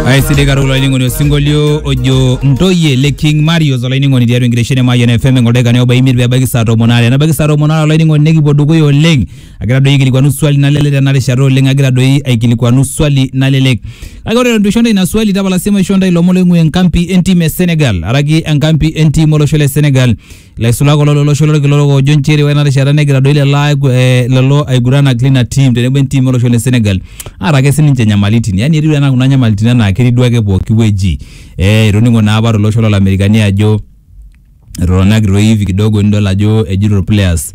aisidai katukul olainining'oni osinkolio ojo ntoyie le king marios olainining'oni tiatua enkitesheni e mayian fm engoldaikani oba imiet pebaiki saa tomon aare nebaiki saa tomon aare olainining'oni nikipuo dukuya oleng agira doi aikilikuanu swali nalelek tena rishata oleng agira doi aikilikuanu swali nalelek kake ore eton itu aisho ntae ina swali tapala sii maishoo ntae ilomon loing'ua enkampi entim e senegal araki enkampi entim olosho le senegal Ilaisulak kulo lolosho lolkila orok oojo nchere ore ena rishata negira doi lelo aigu- eh, lelo aiguranak lina tim tenebo entim olosho le Senegal aata ake sininche nyamalitin. Yani etiu enaa kuna nyamalitin enaa ketii duo ake pooki wueji. Eh, itoning'o naa apa tolosho lolamerikani ajo etotona ake toi hivi kidogo nidol ajo ejito irplayers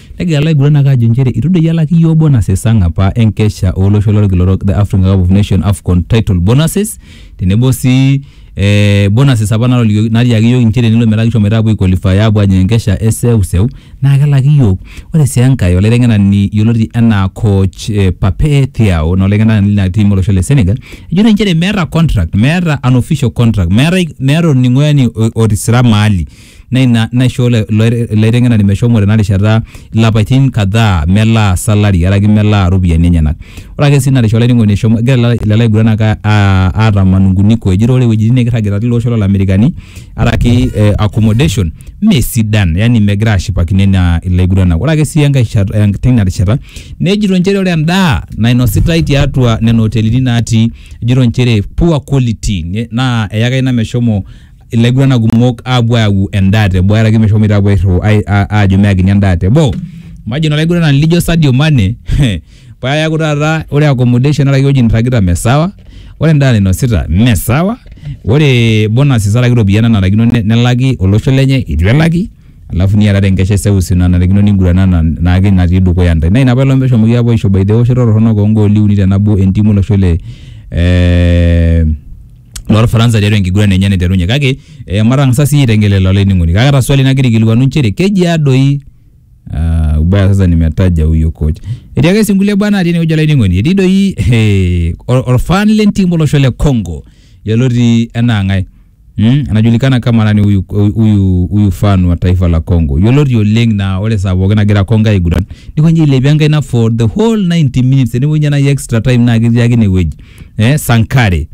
Negira laiguranak aajo nchere eitu doi elak iyiook bonuses ang apa enkesha olosho lolkila orok the African Cup of Nations AFCON title bonuses tenebo sii eh, bonuses apa natolikioki natiaki iyiook nchere tenelo metaa kishomoita apuo aiqualify apuo ajing enkesha e seuseu naa kelaki iyiook. Ore sii enkae olaiteng'enani yioloti enaa coach eh, Pape Thiaw naa olaiteng'enani lina team olosho le Senegal ejo naa nchere meeta contract meeta an official contract meetae meeta olning'o yani o- otisira mahali naa ina naishoo ilo- ilo ilo aiteng'enani meshomo tena rishata ilapaitin kadhaa melaa salary araki melaa iropiyiani enyenak. Ore ake sii ina rishata olainining'oni eshomo egira lelo lelo aiguranak aa- aa- aata manunguniko ejito ore iwuejitin nekirragita tilo osho lolamerikani araki eh accommodation mee sidan yani megira ashipakino ina ilo aiguranak. Ore ake sii enkae shat eh teina rishata nejito inchere ore endaa nainositai tiatua nena otelini natii ejito inchere poor quality ne naa eyaka ina meshomo ilaiguana kumok aapuo ayau endaa teboo aaraki meshomoita aapuo airriu ai- a- aajo meyakini endaa teboo imagine olaiguanani lijo Sadio Mane paa eeku taata ore accommodation araki ewueji nirragita mme sawa ore endaa nainosita mme sawa ore bonuses araki iropiyiani nanarikino ne- nelaki olosho lenye itu elaki alafu niatata enkesha eseuseu nanarikino niguranana naake natii dukuya ntae naa ina paelong peshomoki aapuo aisho by the way ewoshoto torronok oongooli uni tenabo entiim olosho le eh, lorfaransa tiatua enkiguran enye naiterunye kake eh, matang'asa siyie aitengel lelo olainining'oni kake ata swali nagira aikilikuanu nchere keji adoi Ah, ubaya sasa nimetaja huyo coach etii ake sii nkulie baa natii enewueji olainining'oni etii doi eh, or- orfan lentim olosho le congo yioloti enaa ng'ae Mm, anajulikana kama nani huyu, huyu, huyu fan wa taifa la Congo yioloti oleng na ore saa pookin nagira Congo aiguran nikonji ailepie enkaina for the whole 90 minutes enewueji nai extra time naa ketii ake inewueji eh, Sankare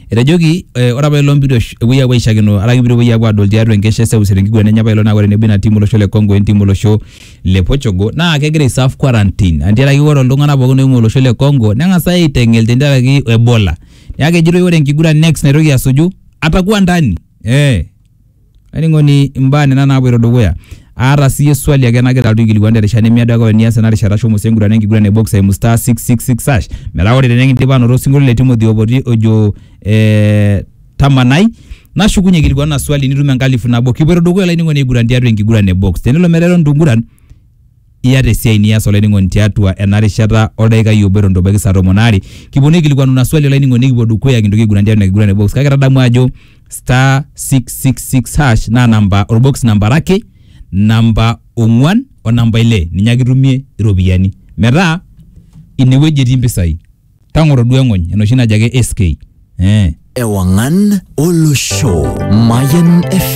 etejoki eh, ore apa ilo mpito esh- epuoi apuo aishakino araki mpito epuoi apuo adol tiatua enkesha e seuseu tenkiguran enye apa ilo naa ore tenebo ina timu olosho le Congo entimu olosho le Portugal naa kegira aiserve quarantine antiaraki ore iltung'anak pookin oing'ua olosho le Congo neng'as aiteng'el tenkaraki Ebola neeku kejitoi ore enkiguran next naitoki asuju atakuwa ndani eh Ainining'oni imbaa nena naapoito dukuya. Aata siiyie swali ake nagira alotu aikilikuan te rishata nemiado ake ore enias ena rishata shomo sii engurana enkiguran e box aimu star six six six hash metaa ore tenikindipa aanoto osinkolio le Timothy Opoti ojo eh, tamanai nashukunye aikilikuanu ina swali nitum enkalifu nabo. Kipoito dukuya olainining'oni aiguran tiatua enkiguran e box. Tenelo metaa eton itu inguran iyata esiai nias olainining'oni tiatua ena rishata oldaikai obo eton itu ebaiki saa tomon aare kiponu aikilikuanu ina swali olainining'oni nikipuo dukuya kintoki aiguran tiatua ina kiguran e box kake tadamu ajo star 666 hash naa namba orbox namba are ake namba ong'uan o namba ile ninye ake itumie iropiyiani metaa inewueji etii impisai tang'oro duo eng'ony enoshi najo ake SK eh. Ewangan Olosho Mayan FM.